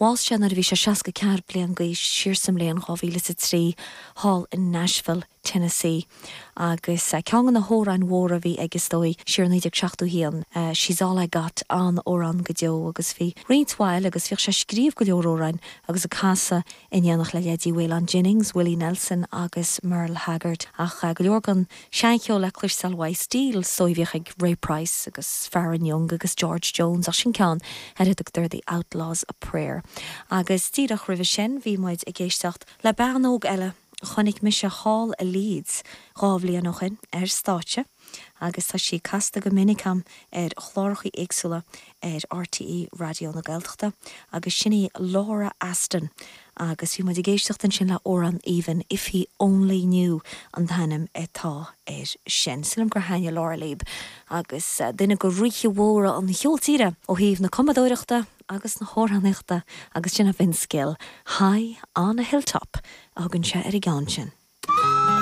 Bhásaigh sé nuair a bhí sé seasca ceathair bliain d'aois siar sa mbliain dhá mhíle is a trí thall in Nashville, Tennessee. Agus ceann de na hamhráin mhóra a bhí aige, is dóigh, siar i naoi déag seachtó haon, 'She's All I Got', an-amhrán go deo. Agus bhí roinnt mhaith eile agus bhíodh sé ag scríobh go leor amhráin agus ag casadh in éineacht le leithéidí Waylon Jennings, Willie Nelson agus Merle Haggard. Ach go leor den seancheol le cloisteáil an stíl a bhíodh ag Ray Price agus Faron Young agus George Jones ach sin ceann ar a dtugtar The Outlaw's Prayer. Agus díreach roimhe sin bhí muid ag éisteacht le bean óg eile a chonaic mise thall i Leeds dhá bhliain ó shin ar stáitse agus tá sí casta go minic a'm ar chlárachaí éagsúla ar RTÉ Raidió na Gaeltachta agus sin í Laura Aston agus bhí muid ag éisteacht ansin le amhrán aoibhinn, If He Only Knew an t-ainm atá air sin. Sílim gur thaitnigh Laura libh agus duine de ríthe mhóra an cheoil tíre ó thaobh na cumadóireachta agus na hamhránaíochta agus sin é Vince Gill, High On A Hilltop a thugann sé ar an gceann sin.